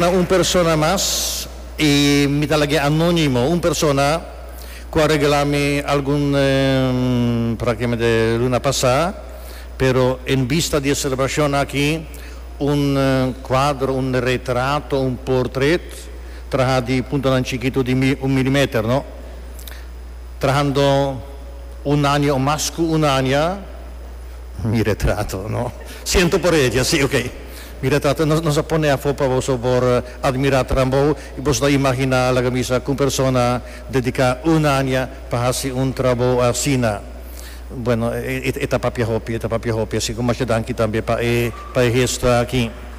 Na un persona mas, i mi ta lag'e anónimo, un persona ku a regalá mi algun prake mende luna pasá, pero en bista di e selebrashon aki, un kuadro, un retrato, un portret trahá di puntonan chikitu di un miliméter, no? Trahando un aña o mas ku un aña, mi retrato, no? Siento por e dje, sí, ok. Mira tata, nos nos a pone afó pa boso por admirá trambou i boso ta imaginá laga mi sa ku un persona dediká un aña pa hasi un trabou asina. Bueno, e ta papia hopi, e ta papia hopi, asi ku masha danki tambe pa e pa e hesto aki.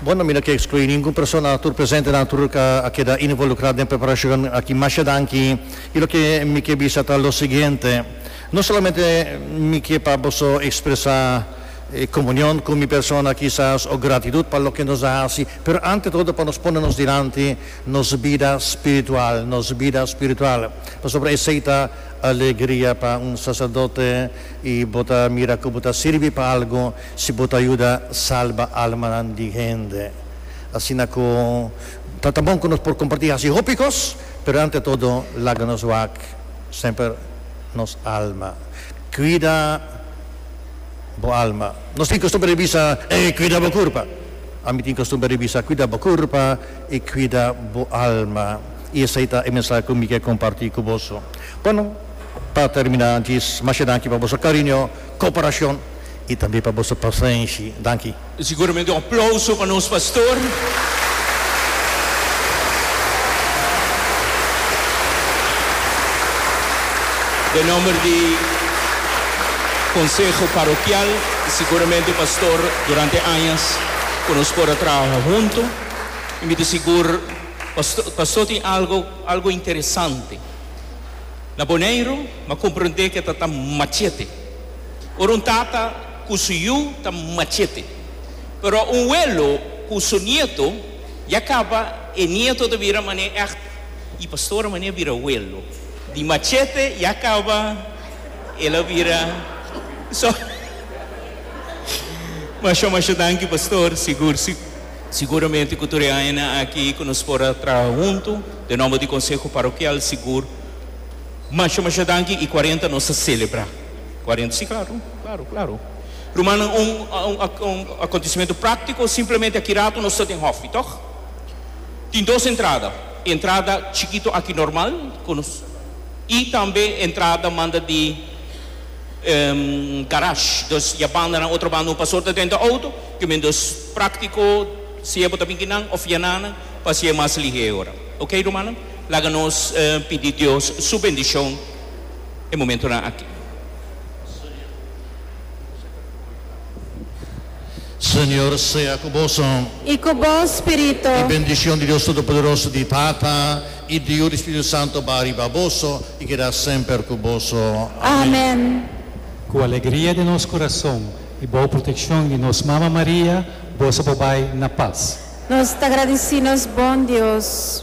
Bueno, mi no ke ekskluí ningún persona tur presente nan tur a keda involukrá den preparashon aki. Masha danki. Y loke mi ke bisa ta lo siguiente, no solamente mi ke pa boso expresa comunion cu mi persona kisas o gratitud pa loke nos a haci, pero ante todo pa nos pone nos dilanti nos bida spiritual, nos bida spiritual, pasobra esey ta alegria pa un sacerdote y bo ta mira cu bo ta sirbi pa algo si bo ta yuda salba almanan di hende. Asina cu. Ta ta bon ku nos por kompartí hasi hopi kos, pero ante todo laga nos wak semper nos alma. Kuida bo alma. Nos tin kostumber di bisa, Ey, kuida bo kurpa. Ami tin kostumber di bisa, Kuida bo kurpa i kuida bo alma. I esei ta e mensahe ku mi ke kompartí ku boso. Bueno, pa terminá djis, masha danki pa boso kariño, koperashon i tambe pa boso pasenshi. Danki. E siguramente un aplauso pa nos pastor. Den nomber di Conseho Parokial, siguramente pastor durante añas ku nos por a traha huntu. I mi ta sigur pastor pastor tin algo algo interesante na Boneiru, mi a komprende ku e ta ta machete. Ora un tata. cu su yu ta machete. Pero un welo cu su nieto ya caba e nieto ta bira mane echt y pastora mane bira welo di machete ya caba el a bira so masho masho danki pastor sigur siguramente cu tur e añanan aki cu nos por a traha hunto den nomber di conseho parokial sigur masho masho danki y cuarenta nos ta celebra. Cuarenta, si claro, claro, claro. Rumannan, un, un, un acontecimento practico, simplemente aki rato nos ta den hof, y toch? Tin dos entrada, e entrada chikito aki normal, cu nos, y tambe e entrada manda di, ehm, garage, dus y a bandanan otro banda un pastor ta drenta auto, cu men dus practico, sea bo ta binki nan of yananan, pa haci'e mas lihe e ora. Ok, rumannan? Laga nos, eh, pidi Dios su bendicion. e momentonan aki. Señor sea cu boso. I cu bo spiritu. I bendicion di Dios Todopoderoso, di Tata, i di Yu, di Spiritu Santo ba riba boso i keda semper cu boso. Amen. Amen. Cu alegria den nos corazon i bao proteccion di nos Mama Maria, boso por bai na paz. Nos ta gradici nos bon Dios.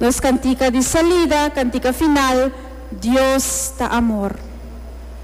Nos cantica di salida, cantica final, Dios ta amor.